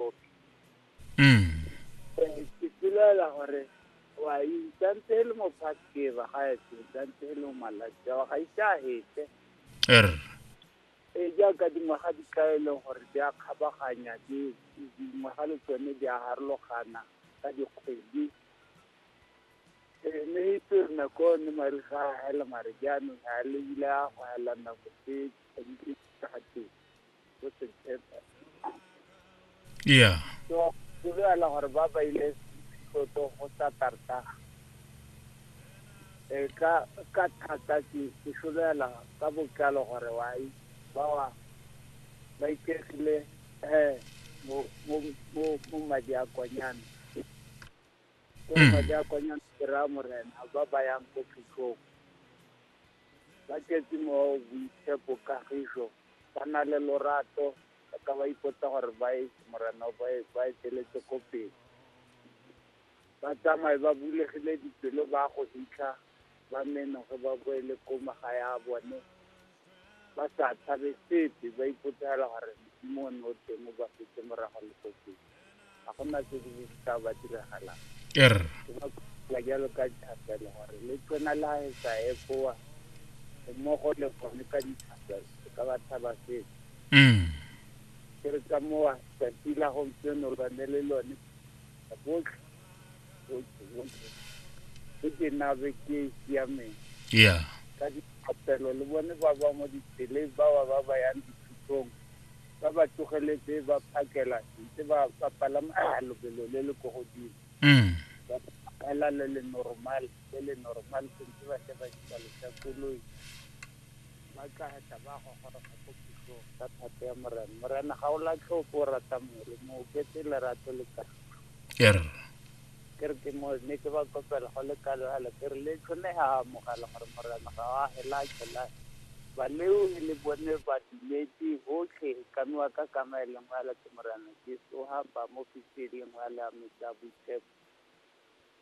kopi Mm. Eh, ke pelaela gore wa isantse e le mo past favor ga e se santse e le mo malatsi ao ga ise a hete Er. e jaaka dingwaga di ka e leng gore di a kgabaganya di- dingwaga le tsone di a harologana ka dikgwedi mme itse nako ne mare ga a hela mare jaanong ga le ile a go hela nako tse tshwanetse ga teng go se tshepa yeah so go begela gore ba ba ile tlotlo go sa tarta e ka ka thata ke ke solela ka botlalo gore wa i ba wa ba ikegile eh mo mo mo madi a konyana ke go ba jaakanya kry-a morena ba ba yang ko phitlhong ba tletse mo boitshepo kagiso ba na le lorato ba ka ba ipotsa gore ba e morena ba e ba e teletse ko pele ba tsamaye ba bulegile dipelo ba go fitlha ba menoge ba boele ko magae a bone ba sa tshabe sepe ba ipotsela gore Modimo o ne o teng o ba setse morago le go se ga gona se se tla ba diragalang er ke ba kopa jalo ka dithapelo gore le tsena la e sa ekoa mmogo le gone ka dithapelo se ka ba tshaba sepe mm ke re ka mowa tsatsi la gompieno lone le lone botlhe ke ke nabe ke e siameng ya ka diphatelo le bone ba ba mo ditseleng ba ba ba ba yang dithutong ba ba tsogeletse ba phakela ntse ba ba palama ah, lobelo le le ko godimo mm ba pala le le normal le le normal sentse ba tle ba isa lesa koloi Ba tla tla ba gogoroga ko pusong ka thato ya Morena. Morena ga o latlhe ope o rata mole, mo oketse lerato le kagiso. Err. Ke re ke mo ne ke ba kopela go le kalo yalo ke re le tlhone ha amogela gore Morena ga wa hela tshela. Baleo e le bone ba dumetse botlhe ka nwa ka kama e lengwe yalo ke Morena Jesu ha ba mo fitse e lengwe yalo ya metsi a boitshepo.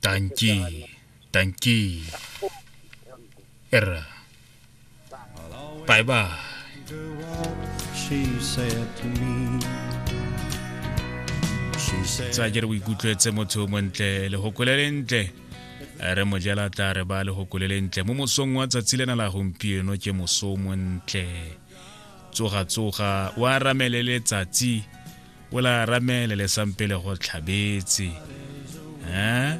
tanki tanki erra bye bye tsa ke re o ikutlwetse motho o montle legokole le ntle re mo jela tla re ba legokole le ntle mo mosong wa tsatsi lena la gompieno ke moso o montle tsoga tsoga wa ramele letsatsi ola ramele le sampe le go tlhabetse um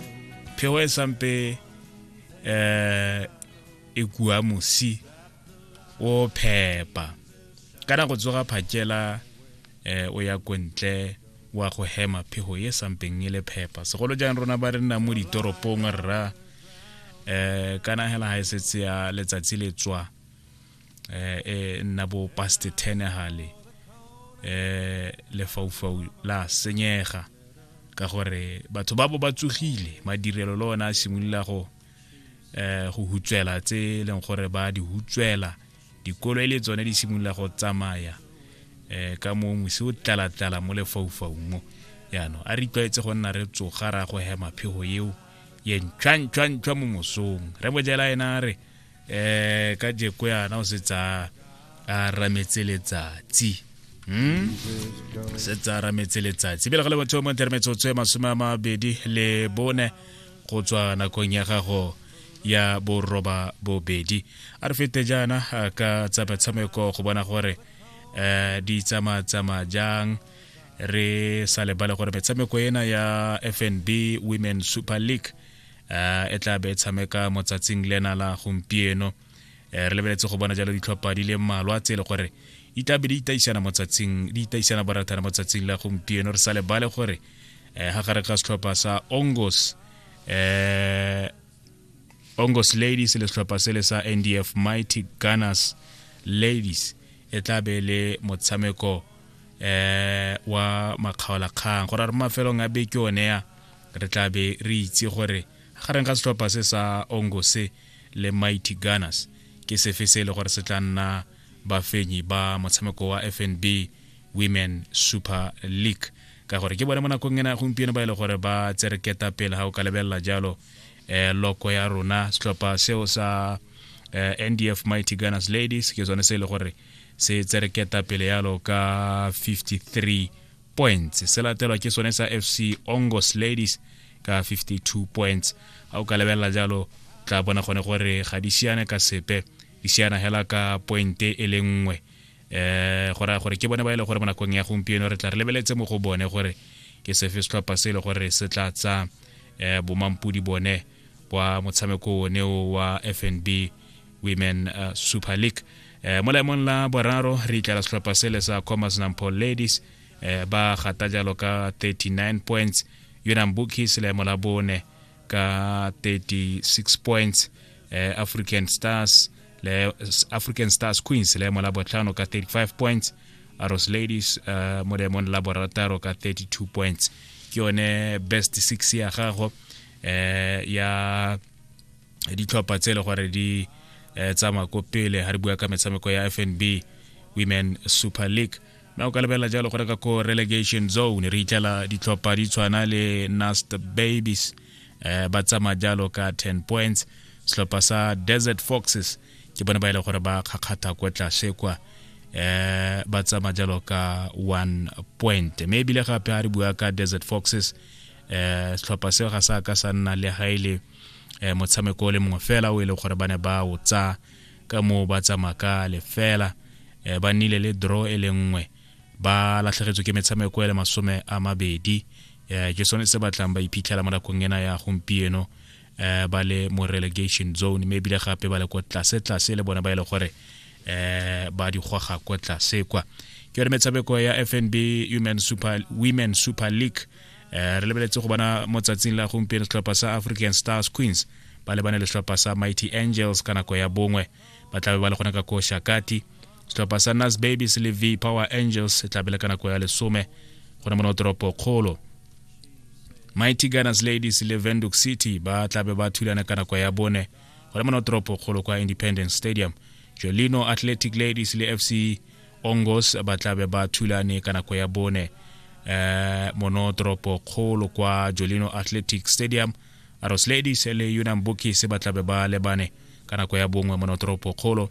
phego e sampe um e kua mosi o phepa ka nako tsoga phakela um o ya kontle wa go hema phego e sampeng e le phepa segolo jang rona ba re nna mo ditoropong rra um kana hela ga e setse ya letsatsi le tswa eh, eh, nna bo paste tenegale eh lefaufau la senyega ka gore batho ba bo ba tsogile madirelo le ona a simolola go eh go hutswela tse e leng gore ba di hutswela dikolo e le tsone di simolola go tsamaya eh ka mo mosi o tlala-tlala mo lefaufaung mo yaanong a re itlwaetse go nna re tsoga ra go hema phego eo ye ntšhwa-ntšhwa-ntšhwa mo mosong re bojela ena a re eh ka jeko yana o se tsa a rametse letsatsi hmm? se tsa rametse letsatsi pele ga le batho mo ntermetsotso e masome a mabedi le bone go tswa nakong ya gago ya boroba bobedi a re fete jaana ka tsa metshameko go bona gore um di tsamatsamaya jang re sa lebale gore metshameko ena ya fnb women super league uh, e tla be e tshameka motsatsing lena la gompieno uh, re lebeletse go bona jalo ditlhopha di le mmalwa tse e le gore di tla be di itaisana motsatsing di itaisana barathana motsatsing la gompieno re sa lebale gore uh, ga gare ga setlhopha sa ongos uh, ongos ladies le setlhopha se le sa ndf mighty gunners ladies e tla be le motshameko eh wa makgaolakgang gore re mafelong a beke one ya re tla be re itse gore gareng ga setlhopha se sa ongo se le mighty gunners ke sefe se e le gore se tla nna bafenyi ba motshameko wa fnb women super league ka gore ke bone mo nakong ena gompieno ba e le gore ba tsere ketapele ga o ka lebelela jalo eh, loko ya rona setlhopha seo sa eh, ndf mighty gunners ladies ke sone se e le gore se tsere ketapele yalo ka 53 points se latelwa ke sone sa fc ongos ladies ka 52 points ga o ka lebelela jalo tla bona gone gore ga di siane ka sepe di siana hela ka pointe e le nngwe um go raya gore ke bone ba e le gore mo nakong ya gompieno re tla re lebeletse mo go bone gore ke sefe setlhopha se e le gore se tla tsa um bomampodi bone kwa motshameko one o wa fnb women uh, super league eh, mo laemong la boraro re itlela setlhopha sele sa commerce nampo ladies eh, ba gata jalo ka 39 points yonang bookies laemo la bone ka 36 points eh, african stars le african stars queens laemo la botlhano ka 35 points aros ladies uh, mo laemong la borataro ka 32 points ke yone best six ya gago eh ya ditlhopha tse e le gore di eh, tsamaya ko pele ga re bua ka metshameko ya fnb women super league na o ka lebelela jalo gore ka ko relegation zone re itlela ditlhopha di tshwana le nast babies eh, ba tsamaya jalo ka 10 points setlhopha sa desert foxes ke bone ba e le gore ba kgakgatha kwa tlase kwa eh ba tsama jalo ka 1 point mme ebile gape a re bua ka desert foxes eh setlhopha seo ga sa ka sa nna le ga ile e eh, motshameko o le mongwe fela o e leng gore ba ne ba o tsa ka moo ba tsamaya ka lefela eh, ba nnile le draw e le nngwe ba latlhegetswe ke metshameko e le masome a mabedi eh, ke sone se batlang ba iphitlhela mo nakong ena ya gompieno eh, ba le mo relegation zone mme ebile gape ba le ko tlase tlase le bone ba e le gore eh, ba digwaga ko tlase kwa ke yone metshameko ya fnb women super, women super league eh, re lebeletse go bona mo tsatsing la gompieno setlhopha sa african stars queens ba lebane le setlhopha sa mighty angels ka nako ya bongwe ba tlabe ba le gone ka ko shakati setlhopha sa nas babies le v power angels e tlabe le ka nako ya lesome gone mo notoropo kgolo mighty gunners ladies le venduk city ba tlabe ba thulana ka nako ya bone gone mo notoropo kgolo kwa independence stadium jolino athletic ladies le fc Ongos ba tla be ba thulane ka nako ya bone eh, mono toropo kgolo kwa Jolino Athletic Stadium Arrows Ladies le Unam Bookies ba tla be ba lebane ka nako ya bongwe mono toropo kgolo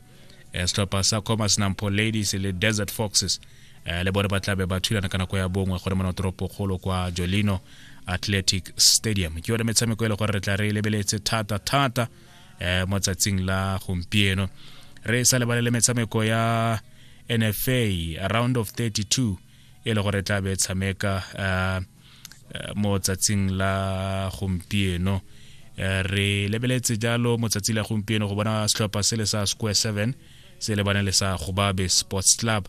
eh, setlhopha sa Commerce Nampo Ladies le Desert Foxes eh, le bone ba tla be ba thulana ka nako ya bongwe gore mono toropo kgolo kwa Jolino Athletic Stadium ke yone metshameko e le gore re tla re lebeletse thata thata eh, mo tsatsing la gompieno re sa lebalele metshameko ya nfa round of 32 e le gore tla be tshameka eh, eh, mo tsatsing la gompieno eh, re lebeletse jalo mo tsatsi la gompieno go bona setlhopha se le sa square 7 se lebane le sa gobabe sports club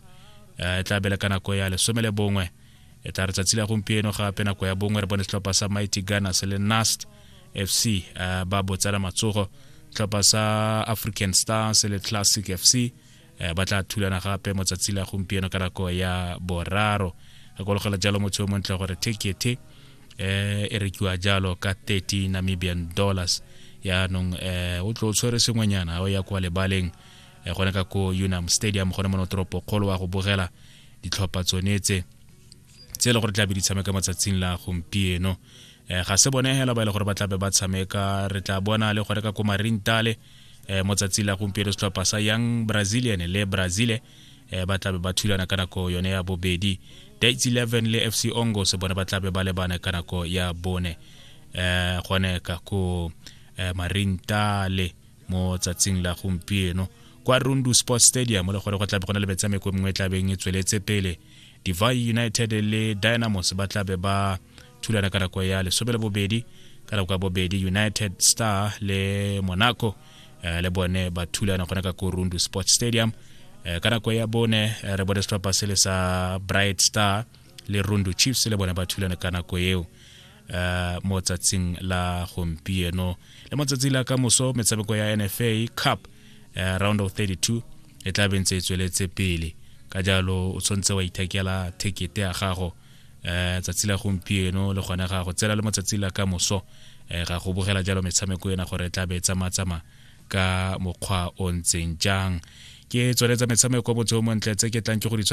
e tla bele ka nako ya lesome le bongwe e tla re tsatsi la gompieno gape nako ya bongwe re bone setlhopha sa mighty gunners le nast fc uh, ba botsela matsogo tlhopha sa african stars le classic fc uh, ba tla thulana gape mo tsatsi la gompieno ka nako ya boraro re kologela jalo motho yo montle gore tekete um e rekiwa jalo ka 30 namibian dollars yaanong um o tlo tshwere sengwenyana o ya kwa lebaleng Eh, gone ka ko unam stadium gone mono toropo kgolo wa go bogela ditlhopha tsone tse tse e le gore tla be di tshameka matsatsing la gompieno um ga se bone hela ba e le gore ba tlabe ba tshameka re tla bona le gore ka ko marintale um mo tsatsing la gompieno setlhopha sa young brazilian le brazile um ba tlabe ba thulana ka nako yone ya bobedi dates 11 le fc ongo se bone ba tlabe ba lebane ka nako ya bone um gone ka ko um marintale mo tsatsing la gompieno kwa rundu sports stadium le gore go tlabe go na le metshameko mengwe e tlabeng e tsweletse pele divai united le dynamos ba tlabe ba thulana ka nako ya lesome le bobedi ka nako ya bobedi united star le monaco eh, le bone ba thulana gona ka korundu sports stadium eh, ka nako ya bone eh, re bone setlhopha se le sa bright star le rundu chiefs le bone ba thulana ka nako eo uh, mo tsatsing la gompieno le matsatsi la ka moso metshameko ya nfa cup uh, round of 32 e tla bentse e tsweletse pele ka jalo o tshwanetse wa ithekela thekete ya gago um tsatsi la gompieno le gone ga go tsela le matsatsi la ka moso um ga go bogela jalo metshameko ena gore e tla be e tsamatsamaya ka mokgwa o ntseng jang ke tsweletsa metshameko mo tseomong tle tse ke tlang ke go di tshware